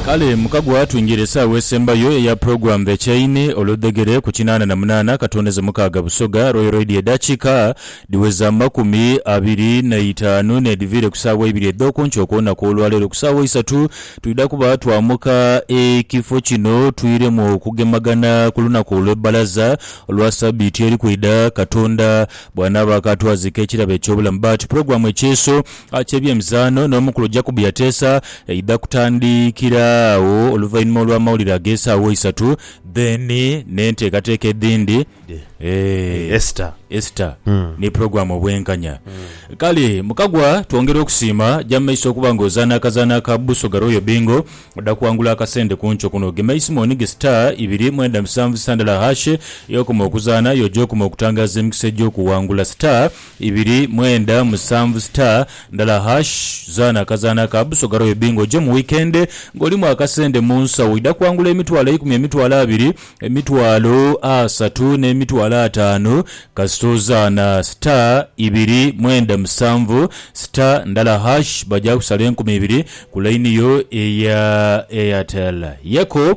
Kale mukagwa twingire esaawa esembayo eya program The Chain olwe dhegere ku kinaana na munaana katondeze mukaaga Busoga Royal Radio edakika dhiweze amakumi abiri na itaanu nedhiviire ku saawa eibiri edhokunkyo kwonaku olwaleero ku saawa isatu twidha kuba twamuka ekifo kino twiremu okugemagana ku lunaku olwe bbalaza olwa sabiiti eri kwidha katonda bwanaaba akatwazika ekirabo ekyobulamu but program ekyeeso ky'ebyemizaano n'omukulu Jacob Yateesa eidha kutandikira agho oluvainhuma olw'amawulire ag'esaawa isatu then n'enteekateeka edhindi Esta Esta ni pulogulaamu obwenkanya. Kale Mukagwa twongera okusiima, ja mu maiso okuba nga ozaana akazaanho aka Busoga Royal Bingo odha kuwangula akasente ku nkyo kuno. Gema eisimooni ghe star ibiri mwenda musanvu sandala hash y'okoma okuzaana y'oja okuma okutangaaza emikisa egy'okuwangula star Ibiri, mwenda, musanvu, star, ndala hash, zaana akazaana ka Busoga Royal Bingo oje mu weekend nga olimu akasente mu nsawo. Oidha kwangula emitwalo eikumi, emitwalo abiri, emitwalo asatu n'emitwalo ataanu kasita ozaana star, ibiri, mwenda, musanvu, star, ndala hash. Baja kusala enkumi ibiri ku line yo eya Airtel. Yeko.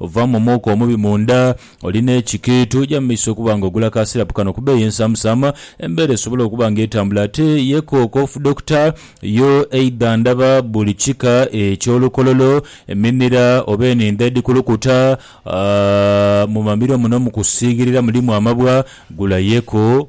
Ovaamu omwoka omubi munda. Oli n'ekikiitu. Ja mu maiso okuba nga ogula ka sirapu kano ku bbeeyi ensamusamu. Embeera esobola okuba nga etambula ate ye kookofu. Dokita yo eidha ndaba buli kika eky'olukololo, eminira oba enindho edhikulukuta. Mu mamiro muno mu kusiigirira mulimu amabwa. Gula yeku.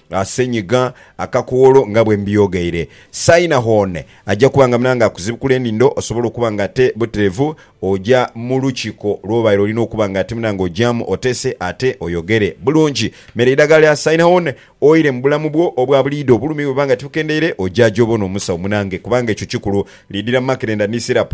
Asenyiga akakoolo nga bwe mbyogeire. Saina Hone aja kuba nga munange akuzibukula enindho osobole okuba nga ate buterevu oja mu lukiko lwobaire olina okuba nga ate munange ojamu otese ate oyogere bulungi. Mere eidagala lya Saina Hone oire mu bulamu bwo obwa buliidho. Obulumi bwebuba nga tibukendeire oja gyobone omusawo munange kubanga ekyo kikulu. Lidira makerenda ni syrup.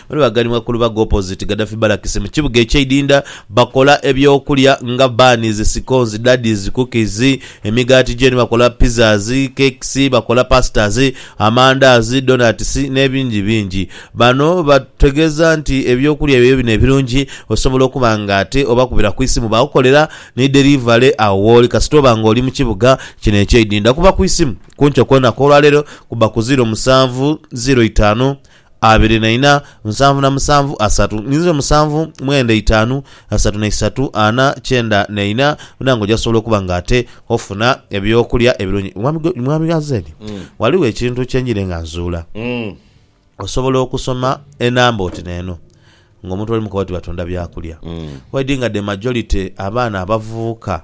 Bano baghanibwa ku lubaga opposite Gaddafi Barracks mu kibuga ekye Idinda, bakola ebyokulya nga buns, scones, daddies, cookies, emigaati gye ni bakola pizzas, cakes, bakola pastas, amandaazi, donuts nebingi bingi. Bano bategeza nti ebyokulya byaibwe bino ebirungi osobola okuba nga ate obakubira ku isimu bakukolera ni delivery agho wooli kasita oba nga oli mu kibuga kino ekye Idinda. Kuba ku isimu ku nkyo kwonaka olwalero ku ba ku ziro musanvu ziro itaanu. abiri na ina, nsanvu na musanvu, asatu, ninze musanvu, mwenda, itaanu, asatu na isatu, ana, kyenda na ina, buna nga ojasobola okuba nga ate ofuna eby'okulya ebirungi. Mwami Go- Mwami Gazeni, ghaligho ekintu kye njire nga nzuula. Osobola okusoma enamba oti n'eno ng'omuntu oli mu kooti batunda byakulya. Waidhi nga the majority abaana abavubuka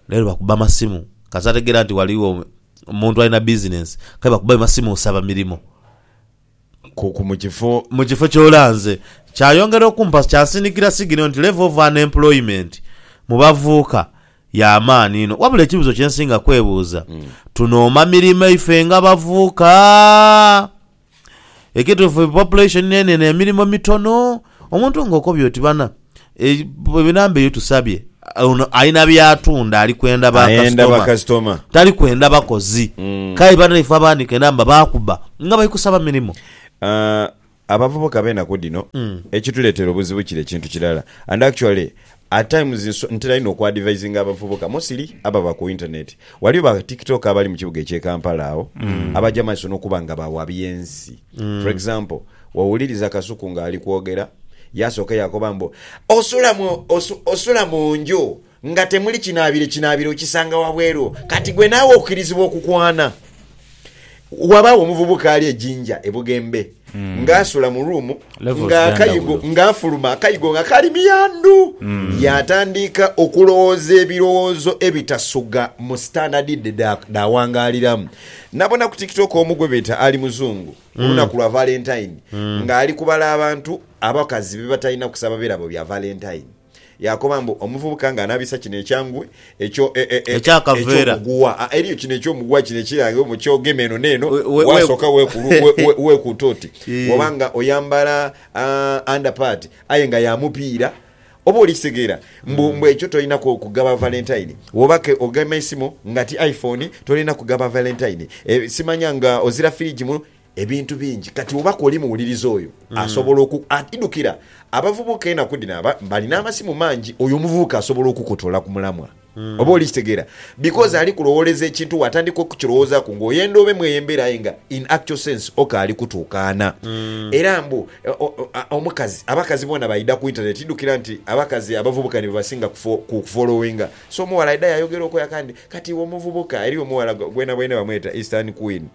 leero bakuba masimu kasita ategeera nti ghaligho Omuntu alina bizinensi kale bakuba bi masimu nsaba mirimo. Ku mu kifo. Mu kifo ky'olanze. Kyayongera okumpa kyansindikira sigino nti level of unemployment mu bavuuka ya maani inho. Wabula ekibuzo kye nsinga kwebuuza, tunooma mirimo ife nga bavuuka? Ekituufu population nenene emirimo mitono. Omuntu nga okobye oti bana enamba eyo tusabye ono alina byatunda ali kwenda ba Ayenda ba kasitoma kasitoma. tali kwenda bakozi kale banaife abaanika enamba baakuba nga bali kusaba mirimo. Ah, abavubuka ab'enaku dhino ekituleetera obuzibu kiri ekintu kirala and actually At times ntera inho oku advisinga abavubuka mostly ababa ku internet. Waliyo ba tiktoker abali mu kibuga ekye Kampala agho abaja maiso nokuba nga bawa byensi. For example wowuliriza Kasuku nga ali kwogera yasoka yakoba mbu osula mu osula mu nju nga temuli kinabiro, ekinabiro okisanga wabweru kati gwe nawe okirizibwa okukwana. Wabaagho omuvubuka ali e Jinja e Bugembe hmm. ng'asula mu ruumu ng'akayigo ng'afuluma akayigo nga kali miyandu hmm. yaatandiika okulowooza ebirowoozo ebitasuga mu sitandadi dhe dhaawangaaliramu nabona ku tiktok omu gwe beeta ali muzungu hmm. olunaku lwa valentine ng'ali kubala abantu abakazi be batalina kusaba birabo bya valentine Yaakoba mbu, Omuvubuka nga anaabisa kino ekyangwe ekyo, e, e, e, Ekyakaveera. eky'omuguwa. Ah, eriyo kino eky'omuguwa kino ekiraga omu ky'ogema eno n'eno, We- we- waasooka weekulu- we- we- weekuuta oti. Eh. Bw'oba nga oyambala ah, underpart aye nga ya mupiira, oba oli kitegeera mbu, mbu ekyo tolina ku- kugaba Valentine. Bw'oba ke ogema eisimu nga ti iPhone, tolina kugaba Valentine. Eh, simanya nga ozira firiji mu. ebintu bingi. Kati oba kwoli muwuliriza oyo asobola oku. Idhukira abavubuka enaku dhino aba balina amasimu mangi. Oyo omuvubuka asobola okukutola ku mulamwa, oba oli kitegeera, because ali kulowooleza ekintu waatandika okukirowoozaaku ng'oyenda obe mu eyo embeera aye nga in actual sense okaali kutuukaana. Era mbu omukazi, abakazi boona baidha ku internet. Idhukira nti abakazi abavubuka ni bebasinga ku kufolowinga. So omughala aidha yaayogera okoya kandi. Kati iwe omuvubuka eriyo omughala gwena bwene bamweta Eastern Queen.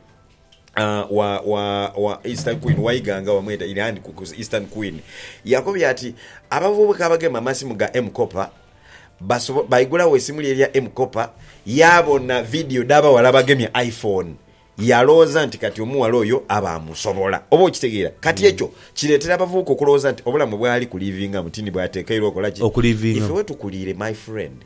wa Eastern Queen waiganga bamweta Ireland Kuku's Eastern Queen yakobye ati, Abavubuka abagema amasimu ga M-Kopa baigulagho esimu lye erya M-Kopa yaabona vidiyo dh'abaghala abagemye iPhone yalowooza nti kati omughala oyo aba amusobola. Oba okitegeera? Kati ekyo kireetera abavubuka okulowooza nti obulamu bw'ali kuliivingamu ti ni bw'atekeirwa okola ki? Ife we tukuliire my friend.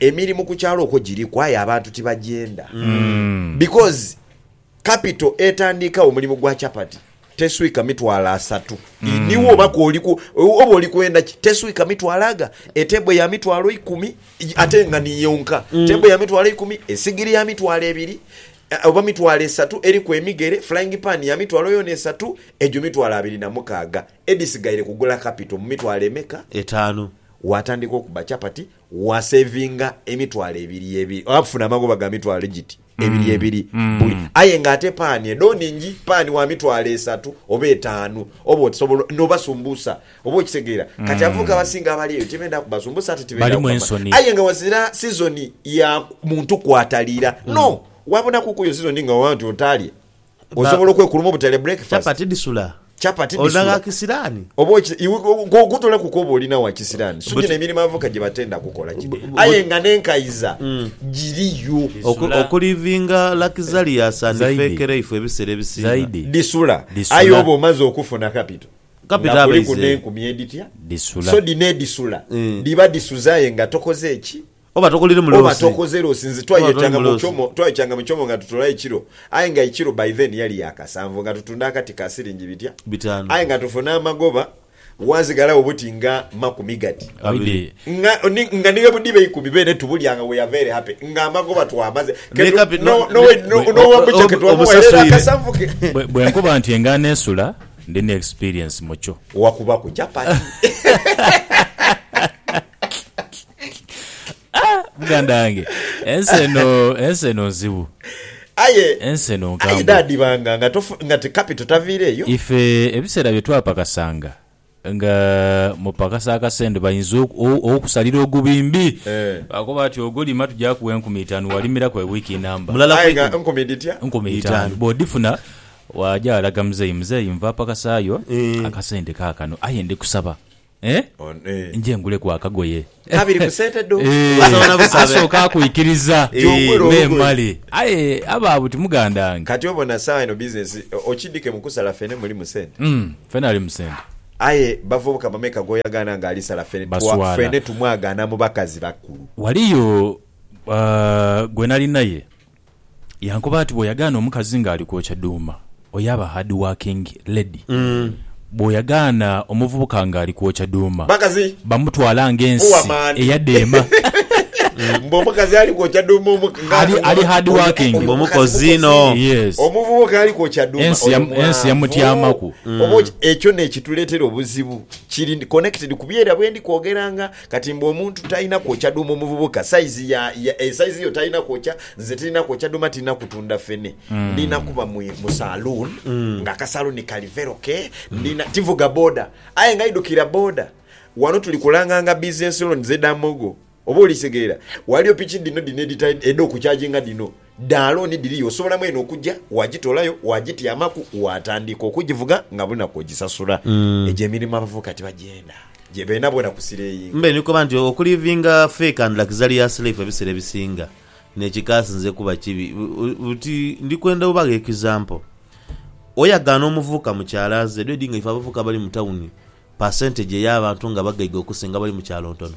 Emirimu ku kyalo okwo giriku aye abantu tibagyenda because capital etandiika omulimu gwa chapati teswika mitwalo asatu iniwo oba koliku oba oli kwenda ki teswika mitwalo aga etebo ya mitwalo ikumi i- ate nga ni yonka tebo ya mitwalo ikumi esigiri ya mitwalo ebiri eh, oba mitwalo esatu eriku emigere flying pan ya mitwalo yona esatu egyo mitwalo abiri na mukaaga edisigaire kugula capital mu mitwalo emeka Etaanu. watandika okuba chapati Waaseevinga emitwalo ebiri ebiri, oba kufuna amagoba ga mitwalo egiti ebiri ebiri buli. Aye ng'ate paani edho nhingi, paani wa mitwalo esatu oba etaanu, oba osobola n'obasumbusa. Oba okitegeera? Kati abavubuka abasinga abali eyo tibenda kubasumbusa ate tibenda Balimu kukama. ensoni. Aye nga ghazira sizoni ya muntu kwataliira. No, waabonaku ku yo sizoni nga waba oti otaalye, Osobola okwekuluma obutale breakfast. Chapati dhisula. Chapati dhisula. Olina gha kisiraani. Oba oki, iwe kotolaku kwoba olina wa kisiraani. So gino emirimu abavubuka gye batenda kukola gino. Aye nga n'enkaiza mm. giriyo. Oku, okulivinga luxurious and fake life ebiseera ebisinga. Dhisula. Aye oba omaze okufuna kapito. Kapito aba ize. Nga kuliku n'enkumi edhitya. Dhisula. So dhino edhisula. Mm. Dhiba dhisuze aye nga tokoze ki? Oba tokoliremu loosi. Oba tokoze loosi. Nze twayekyanga mu kyomo, twayekyanga mu kyomo nga tutola ekiro. Aye nga ekiro by then yali ya kasanvu nga tutunda akati ka siringi bitya? Bitaanu. Aye nga tufuna amagoba wazigalagho buti nga makumi gati. Abiri. Nga, ni, nga ni bwebudiba eikumi beene tubulya nga we are very happy nga amagoba twamaze. Naye Ketu, kapi, no, no, no, ne, no, no one butcher obi, ketuwamuwa era era omusasoire. akasanvu ke. Bwe, bwe nkuba nti engaano esula, ndi ne experience mu kyo. Wakubaku chapati. Muganda wange ensi eno ensi eno nzibu. Aye Ensi eno aye nkambwe. dhaadhibanga nga tofu nga ti kapito taviire eyo. Ife ebiseera bye twapakasanga nga mupakasa akasente bainza oku o okusalira ogubimbi. Eh. Baakoba ati ogolima tugya kuwa enkumi itaanu walimiraku e wiiki inamba. Mulala Aye nga kwikumi. nkumi dhitya? Nkumi itaanu. Bw'odhifuna waagya walaga muzeeyi, muzeeyi nva pakasaayo akasente kaakano aye ndi kusaba Eh? On- eh. Nje nguleku akagoye. Kabiri ku sente dho. Eh, Osobola busabe. asooka akuikiriza Eh. Gy'ogula olugoye. n'emale. Aye aba buti muganda wange. Kati obona sawa eno business eh, okidike mukusala fene muli mu sente. Mm, fena ali mu sente. Aye bavubuka bameka goyagana nga alisala fene twa, Baswala. fene tumwagana mu bakazi bakulu. Waliyo uh, gwe nali naye Yankoba ati, Bw'oyagaana omukazi ng'ali kwokya dhuuma, oyo aba haadiwaakingi, lady. Bw'oyagaana omuvubuka ng'ali kwokya dhuuma, bamutwala ng'ensi eyadeema. Mbu omukazi ali kwokya dhuuma omukazi. Ali haadiwaakingi. Mbu mukozi inho. Yes. Omuvubuka ali kwokya dhuuma oyo mwanvu. Ensi yamutyamaku. Oba ekyo n'ekituleetera obuzibu. Kiri connected ku byeira bwe ndi kwogeranga. Kati mbu omuntu talina kwokya dhuma omuvubuka size ya ya e size yo talina kwokya nze tilina kwokya dhuma tilina kutundha fene ndina kuba mu mu saloon nga aka saloon kali vero ke ndina tivuga boda aye nga idhukira boda wano tuli kulanganga business loans edha mogo oba oli kitegeera waliyo piki dhino dhino edhita edho kukyajinga dhino Dha looni dhiriyo osobola mwene okugya waagitoolayo waagityamaku waatandika okugivuga nga buli lunaku ogisasula. Egyo emirimo abavubuka tibagyenda gye beena boona kusireeyinga. Mbe ni koba nti okuliivinga fake and luxury ya sleife ebiseera ebisinga n'ekikaasi nze kuba kibi buti. Ndi kwenda obagho example oyagaana omuvubuka mukyalo aze edho edi nga ife abavubuka abali mu tawuni percentage ey'abantu nga bagaiga okusinga abali mu kyalo ntono.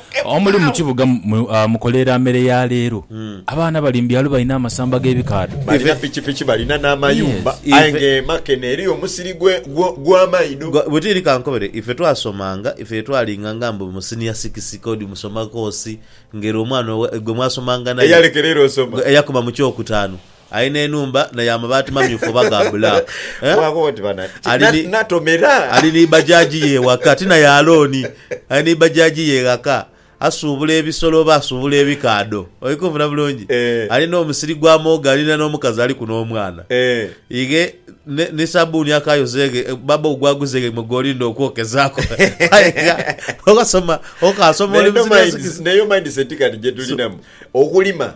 Omuli mu kibuga mwe mukoleera mere ya leero. Abaana bali mu byalo balina amasamba g'ebikaadho. Balina pikipiki, balina n'amayumba, aye ng'emaka eno eriyo omusiri gw'amaidho. Bwetiiri kankobere, ife twasomanga, ife ye twalinganga mbu mu siniya sikisi k'odi musoma koosi ng'ere omwana gwe mwasomanga naye eyalekera ere osoma, eyakoma mu kyokutaanu. Alina enhumba na ya mabaati mamyufu oba ga black eh? Ali ni bajaji ye ewaka ti na ya looni. Ali ni bajaji ye ghaka asuubula ebisolo oba asuubula ebikaadho. Oli kunfuna bulungi? Ali n'omusiri gwa muwogo alina n'omukazi aliku n'omwana. Ighe ni sabuuni akayoza eghe baba ogwo aguza eghe gwe gw'olinda okwokezaaku. Aye gha okasoma, okasoma oli mu zino ensi dhino. Naye eyo mindset kati gye tulinamu. Okulima.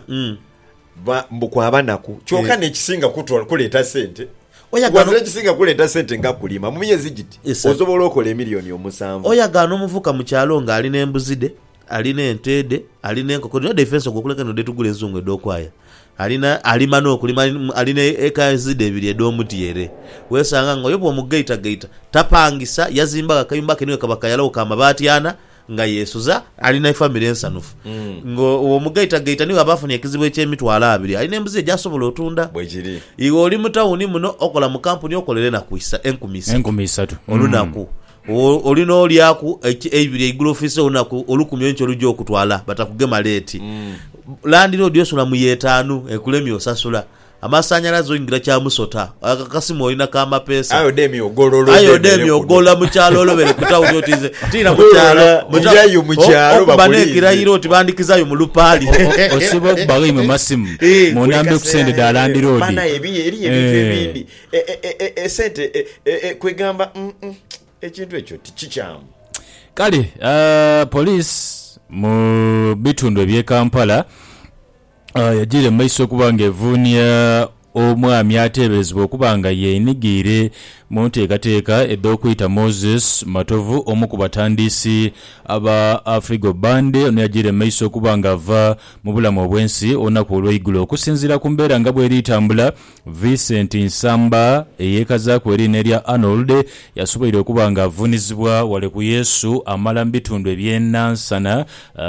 Ba, mbu kwa banaku. Kyoka Eh. n'ekisinga kutola, kuleeta sente, Oyagala- wazira ekisinga kuleeta sente nga kulima, mu myezi giti, Esatu. osobola okola emilioni omusanvu. Oyagala n'omuvubuka mu kyalo nga ali n'embuzi dhe, ali n'ente dhe, ali n'enkoko dhe, oda ife ensoga okuleka eno dh'etugula enzungu edh'okwaya, ali na, alima n'okulima, ali mu, ali n'eekazi dhe ebiri edh'omutyeere, weesanga nga oyo bw'omugaitagaita, tapangisa, yazimbagho akayumba ke niwe kaba kayalagho ka mabaati ana, nga yeesuza, ali n'efamire ensanhufu. Nga owo mu gaitagaita ni bw'aba afunye ekizibu eky'emitwalo abiri, ali n'embuzi ye gy'asobola otunda. Bwe kiri. Iwe oli mu tawuni muno, okola mu kampuni, okolera enaku isa, enkumi isatu. Enkumi isatu. Olunaku. Owo oli n'olyaku eki, eibiri eigulo ofiise olunaku, olukumi enkya olugya okutwala, batakugema leeti. Landiroodi osula mu y'etaanu, ekulemye osasula. Amasanhalaze oingira kya musota. Aye akakasimu olina ka mapeesa. Aye odemye ogolola Aye odemye odemye kuno. ogolola mu kyalo olobere ku tawuni oti nze tiina mu kyalo. Ogolola, Mu ta- irayo mu o- kyalo Okuba bakulinze. n'ekirayiro oti bandhikizayo mu lupaali. Osobola okubagho imwe masimu Eh, munambe ku sente dha landiroodi. Banaye ebi- eriyo ebintu Eh. ebindi E- e- e- e- esente e- e- e- kwegamba mm, mm, ekintu ekyo tikikyamu Kale ah, police mu bitundu eby'e Kampala yajiire mu maiso okuba nga evuunia omwami ateeberezebwa okuba nga yeenighiire mu nteekateeka edh'okwita Moses Matovu omu ku batandiisi aba Afrigo Band ono yajiire mu maiso okuba nga ava mu bulamu obw'ensi olunaku olw'eigulo. Okusinziira ku mbeera nga bweri tambula, Vincent Nsamba, eyeekazaaku eriina erya Arnold, yasoboire okuba nga avuunizibwa wale ku Yesu amala mu bitundu eby'e Nansana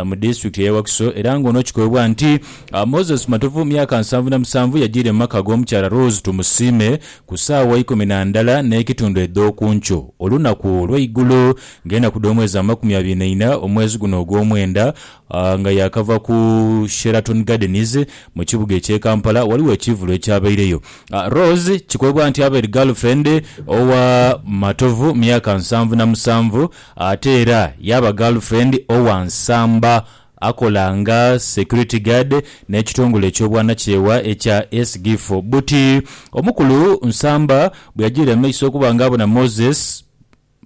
mu disitulikiti ey'e Wakiso era ng'ono kikoebwa nti Moses Matovu myaka nsanvu na musanvu yajiire mu maka g'omukyala Rose Tumusiime ku saawa ikumi na ndala n'ekitundu edh'oku nkyo olunaku olw'eigulo ng'enaku dh'omwezi amakumi abiri na ina omwezi guno ogw'omwenda A Nga yaakava ku Sheraton Gardens mu kibuga eky'e Kampala, ghaligho ekiivulo ekyabaireyo. A Rose kikoibwa nti abaire girlfriend owa Matovu myaka nsanvu na musanvu ate era yaaba girlfriend owa Nsamba akola nga security guard n'ekitongole eky'obwanakyewa ekya SGIF. Buti omukulu Nsamba bwe yajiire amaiso okuba nga abona Moses,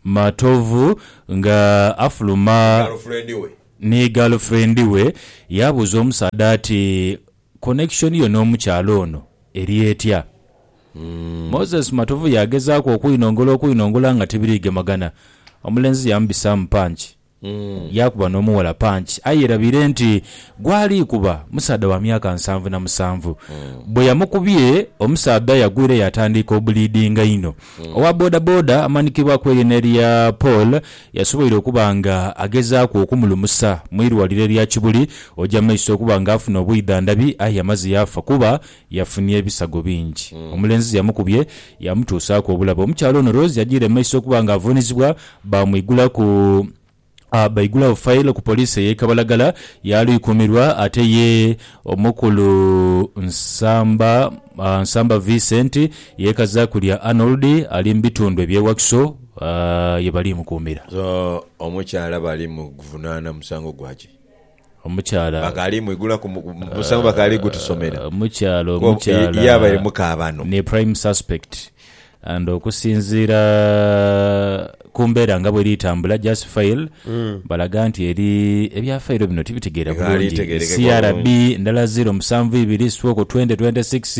Matovu nga afuluma ni galufrendi we, yaabuuza omusaadha ati, Connection yo n'omukyala ono eri etya? Moses Matovu yaagezaaku okwinongola okwinongola nga tibiriigemagana. Omulenzi yaamubisaamu punch. Yaakuba n'omughala panki, aye yerabire nti gwali kuba musaadha wa myaka nsanvu na musanvu. Bwe yamukubye, omusaadha yagwira yaatandiika obuliidinga inho. Owa bodaboda amanikibwaku erye n'erya Paul yasoboire okuba nga agezaaku okumulumusa mu irwaliro erya Kibuli oja mu maiso okuba nga afuna obwidhandhabi aye amaze yaafa kuba Yafunye ebisago bingi. Omulenzi yamukubye yamutuusaaku obulabe. Omukyala ono Rose yajiire mu maiso okuba nga avuunizibwa baamwigula ku baigulagho failo ku poliisi ey'e Kabalagala yaalwikuumirwa ate ye omukulu Nsamba Nsamba Vincent yeekazaaku lya Arnold ali mu bitundu eby'e Wakiso ye bali mukuumira. So omukyala bali muvunaana musango gwa ki? Omukyala. Bakaali mwigula ku musango bakaali gutusomera. Omukyala omukyala. Ye abaire mukaabano. Ni prime suspect and okusinziira ku mbeera nga bweri etambula just file balaga nti eri ebya file bino tibitegeera bulungi. CRB ndala ziro musanvu ibiri stroke twenty twenty six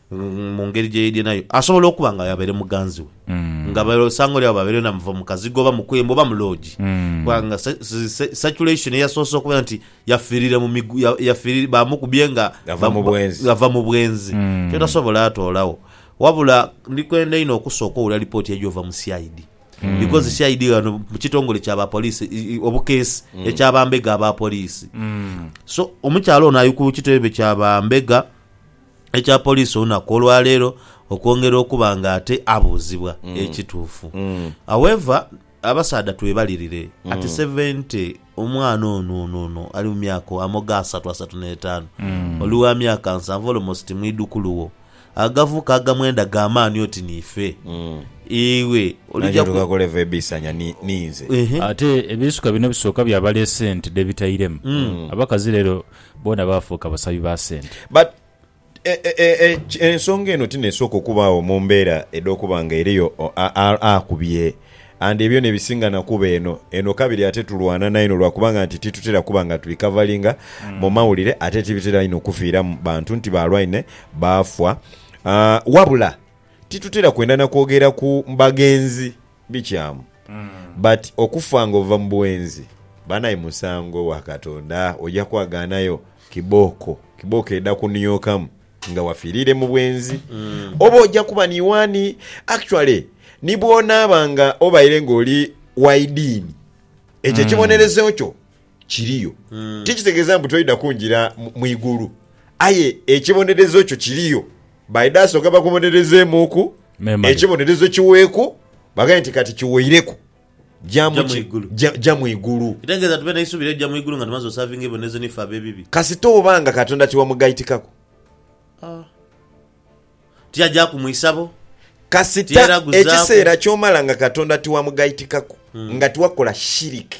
Mu ngeri gye yeidhye nayo, asobola okuba nga yabaire muganzi we, nga eisango lyabo baabaire na muva mu kazigo oba mu kwembo oba mu loogi. Kubanga circulation eyasoose okubeera nti yafiirire mu migu, yafiirire, baamukubye nga ava mu bwenzi, ava mu bwenzi. Kyotasobola atoolagho. Wabula ndi kwenda inho okusooka owulira lipooti eija ova mu CID. Because CID ghano mu kitongole kya ba police, obukeesi, ekya bambega aba police. So omukyala ono ali ku kitebe kya bambega. ekya poliisi olunaku olwaleero okwongera okuba nga ate abuuzibwa ekituufu. However, abasaadha twebalirire ati Sevente omwana ono ono ono ali mu myaka amoga asatu asatu n'etaanu oli wa myaka nsanvu almost mwidhukulu wo agavu ka gamwenda ga maani oti niife iwe Nange olija ku tukakola eva ebiisanya ni- ninze. Ehe. Ate ebiisuka bino ebisooka bya baleese nti dhebitairemu. Abakazi leero Boona baafuuka basabi ba sente. But e, e, e, ensonga eno ti n'esooka okubaagho mu mbeera edh'okuba nga eriyo akubye. And ebyo n'ebisinga na kuba eno. Eno kabiri ate tulwana naino lwa kubanga nti titutera kuba nga tuli kavalinga mu mawulire ate tibitera inho kufiiramu bantu nti baalwaine, baafa. Wabula titutera kwenda na kwogera ku bagenzi. bikyamu but okufa nga ova mubwenzi banaye musango wakatonda oja kwaganayo kibooko kibooko eda kuniokamu nga wafirire mubwenzi oba oja kuba niwani actually nibwonaaba nga obaire nga oli waidiini ekyo ekibonerezo kyo kiriyo. Ti kitegeeza mbu toidha kungira mu igulu, aye ekibonerezo kyo kiriyo. Baidha sooka bakubonerezeemuuku, ekibonerezo kiweeku, baghambe nti kati kiweireku, ja mu ki? Ja mu igulu. Kitegeeza tube n'eisubi ery'okuja mu igulu nga tumaze osaavinga ebibonerezo ni ffe ab'ebibi? Kasita oba nga Katonda tiwamugaitikaku. Ti agyaku mu isabo. Kasita ekiseera ky'omala nga Katonda tiwamugaitikaku, nga tiwakola shiriki.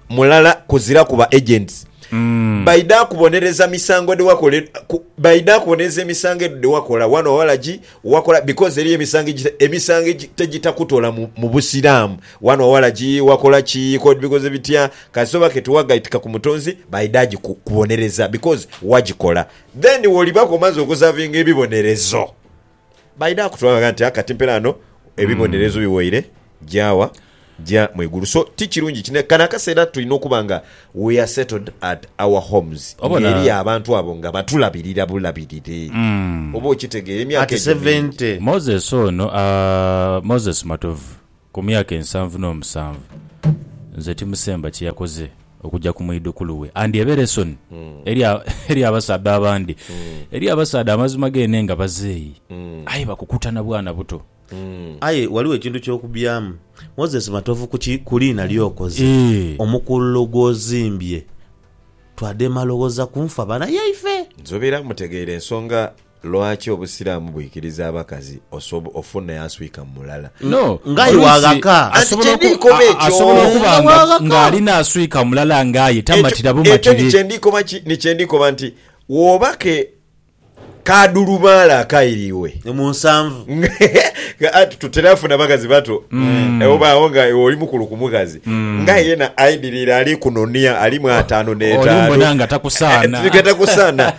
mulala kuzira ku ba agents baidha kubonereza misango dhewakola e- ku- baidha kubonereza emisango edho dhewakola wano walagi wakola because eriyo emisango egita- emisango egi- tegitakutola mu mu busiraamu wano walagi wakola ki kod bikoze bitya kasita oba ke tiwagaitika ku mutonzi baidha giku- kubonereza because wagikola then wolibaku omaze okusavinga ebibonerezo Baidha kutwala nti kati mpela ghano ebibonerezo biwaire gyawa? Gya mu igulu. So ti kirungi ki kano akaseera tulina okuba nga we are settled at our homes Obona? ng'eri abantu abo nga batulabirira bulabirire. Oba okitegeera emyaka At egyo mingi. 70. Moses ono a Moses Matovu Ku myaka ensanvu n'omusanvu, nze timusemba kye yakoze okuja ku mwidhukulu we. Andyebera esoni eri eri abasaadha abandi. Eriyo abasaadha amazima geenhe nga bazeeyi, aye bakukuta na bwana buto. Aye ghaligho ekintu ky'okubyamu. Moses Matovu ku ki? Ku liina ly'okoze, Eeh. omukululo gw'ozimbye, twadema loghoza ku nfa bana yaife. Nzobera mutegeire ensonga Lwaki obusiramu bwikiriza abakazi osob ofune aswika mulala. No, Nga aye oluusi waghaka. Anti asobola oku- kyendikoba a- a- ekyo. asobola okuba Nga nga waghaka. ng'alina aswika mulala nga aye Ekyo tamatira ekyo bumatire. nikyendikoba ki nikyendikoba nti woba ke kadhulubaale akairiwe Ni mu nsanvu. nga ati tutera funa bakazi bato Eh, obaawo nga iwe oli mukulu ku mukazi nga yena aidirire ali kunonia alimu ataano Oli n'etaano mbona nga takusaana. Eh, tigatakusaana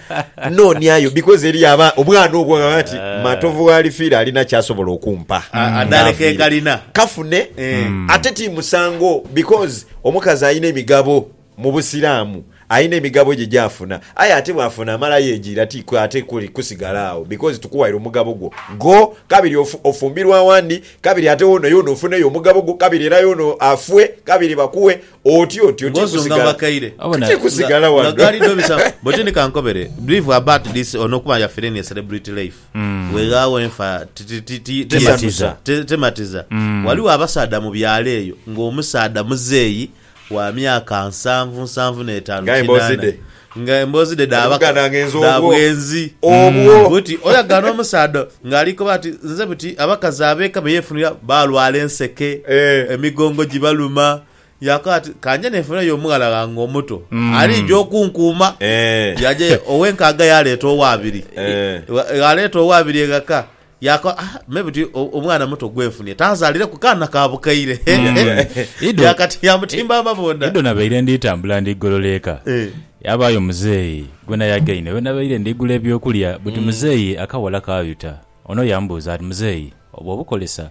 Nnooniayo, because eriyo aba, obwana obwo bwaba bati, eh. Matovu gh'alifiira alina ky'asobola okumpa. Adhaale ke kalina. Kafune. Eh. Ate ti musango because omukazi alina emigabo mu Busiraamu. Alina emigabo gye gy'afuna. Aye ate bw'afuna amala yeejiira ti ate kusigala agho because tukuwaire omugabo gwo. Go kabiri ofumbirwe awandi, kabiri ate woono yoona ofuneyo omugabo gwo, kabiri era yoona afwe, kabiri bakuwe. Oti oti oti Ngozi omuna kusigala. bakaire. Abo na- Kati kusigala Nga- wano. nga gali do bisa- But ni kankobere believe about this ono kuba yafire ni celebrity life Mm. weghawo enfa ti- ti- ti- ti- Tematiza. te- tematiza Mm. waliwo abasaadha mu byalo eyo nga omusaadha muzeeyi wa myaka nsanvu nsanvu n'etaanu Nga embozi kinaana. dhe. Nga emboozi dhe dha baka dha bwenzi buti oyagaana omusaadha ng'ali koba ati nze buti abakazi ab'eka be yeefunira baalwala enseke, emigongo gibaluma. Yaakoba ati ka nje neefunireyo omughala ghange omuto aliija okunkuuma. Yaja ye ow'enkaaga yaaleeta ow'abiri. Bw'aleeta ow'abiri eghaka Yaako, ah, maybe ti o- omwana muto gwenfunye tanzalireku kaana ka bukaire. Ido- Yakati yamutimba amabonda. Ido nabaire ndi tambula ndi golola eka. Eh. Yabaayo muzeeyi gwe nayagaine we nabaire ndi gula eby'okulya buti muzeeyi akawala kaayuta. Ono yambuuza ati, Muzeeyi, obwo obukolesa?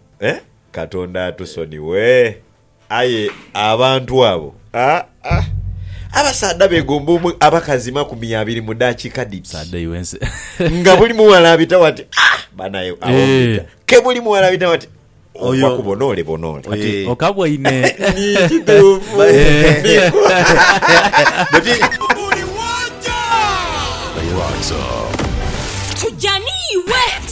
Eh, Katonda atusonighe! Aye abantu abo! Aa, abasaadha begomba omu abakazi makumi abiri mu daakika dhiti. Nga buli mughala abitagho ati, Ah! Banae, agho mbita. Ke buli mughala abitagho ati, Oyo. Ova ku bonoole bonoole. Kati Eh. okaboine. Ni kituufu. Buli wooja. Tujja n'iwe.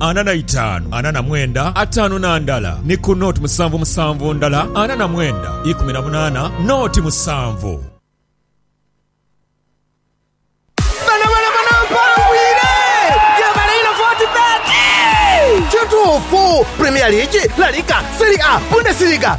ana na itaanu, ana na mwenda, ataanu na ndala, ni ku nooti musanvu musanvu ndala, ana na mwenda, ikumi na munaana, nooti musanvu. Bano bano bano mpangwire gyebale ino fortebet Kituufu! Premier League, La Liga, Serie A, Bundesliga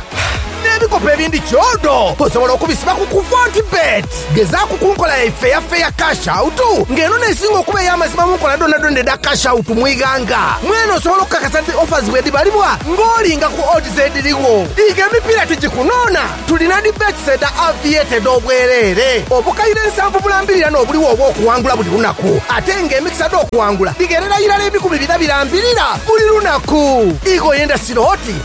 N'ebikopo ebindi kyodo osobola okubisiba ku ku Fortebet. Gezaaku ku nkola yaife eya Fair Cash Out nga eno n'esinga okuba ey'amazima mu nkola dhoonadhoona edha Cash Out mu ighanga. Mwene osobola okukakasa nti offers bwedhibalibwa ng'olinga ku odds edhirigho. Iga emipiira tigikunoona, Tulina dhi bets edha Aviator edh'obwereere, obukaire nsanvu bulambirira n'obuligho obw'okuwangula buli lunaku. Ate nga emikisa dh'okuwangula dhigherera irala ebikumi bina birambirira buli lunaku. Iga oyenda sirooti,